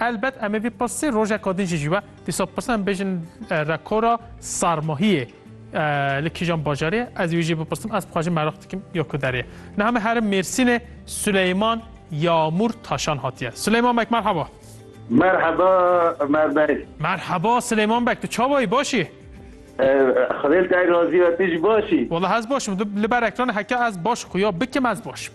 Elbet em ê vî pirsî rojeka din jî jî be. Dîsa pirsî em bêjin rekora sarmahiyê li kîjan bajarê ye? Ez wî jî bipirsim, ez bixwajim meraq dikim ya ku derê ye. Niha me herim Mêrsînê Suleyman Yamûr Taşan hatiye. Suleyman bek merhaba. Merhaba Ömer bek. Merhaba Suleyman bek, tu çawa yî baş î? Xwedê li te razî be, tu jî baş î? Wala ez baş im, li ber ekranê heke ez baş xuya bikim ez baş im.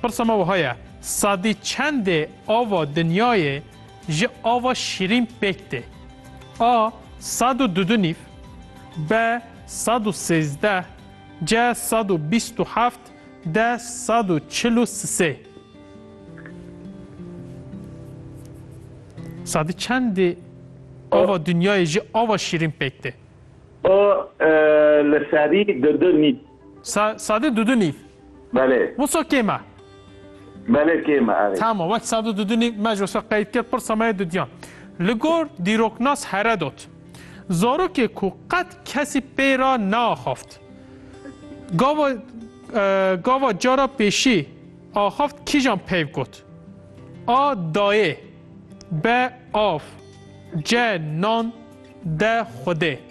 Pirsa me wiha ye, Sadî çendê ava dinyayê ji ava şîrîn pêk tê? A sed û dudu nîv, B sed û sêzdeh, C sed û bîst û heft, D sed û çil û sisê. Sadî çendê ava dinyayê ji ava şîrîn pêk tê? A li serî dudu nîv. Sa sadu dudu nîv. Belê. Wiso kêm e. Belê kêm e erê. Tama wek sadu dudu nîv me ji wiso qeyd kir pirsa me yê dudiyan. Li gor dîroknas Heredot zarokê ku qet kesî pê ra neaxaft gava gava cara pêşî axaft kîjan peyv got? A dayê B av C nan D xwedê.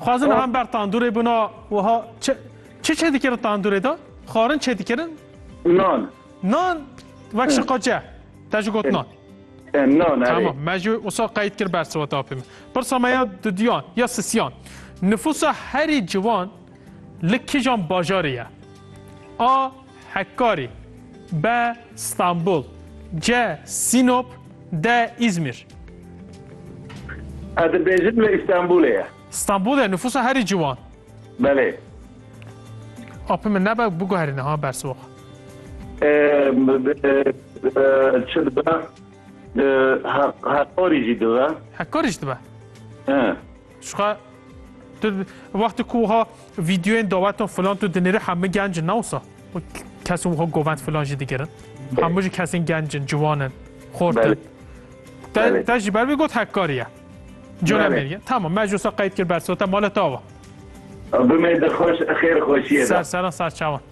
Xwazin han ber tandurê bûna wiha çi çi çêdikirin tandurê de? Xwarin çêdikirin? Nan. Nan wek şiqace. Te ji got nan. Nan erê. Tamam me ji wisa qeyd kir ber siweta apê min. Pirsa me ya dudiyan ya sisiyan. Nifûsa herî ciwan li kîjan bajarê ye? A Hekkarî, B, Stenbul, C, Sînop, D, Îzmîr. Ez dibêjim lê Îstenbulê ye. Stenbul e nüfusa herî ciwan. Belê. Apê min nebe biguherîne ha bersiva. Çi dibe? Hekkarî jî dibe. Hekkarî jî dibe. Şuxa tu wextê ku wiha vîdyoyên dawetan filan tu dinêrî hemû genc in ne wisa? Kesên wiha govend filan jî digirin. Hemû jî kesên genc in, ciwan in, xort in. Te te jî ber vê got hekkarî ye. Cola mêrî. Tamam me ji wisa qeyd kir bersiva te mala te ava. Bimê di xweş xêr xweşiyê de. Ser seran ser çawan.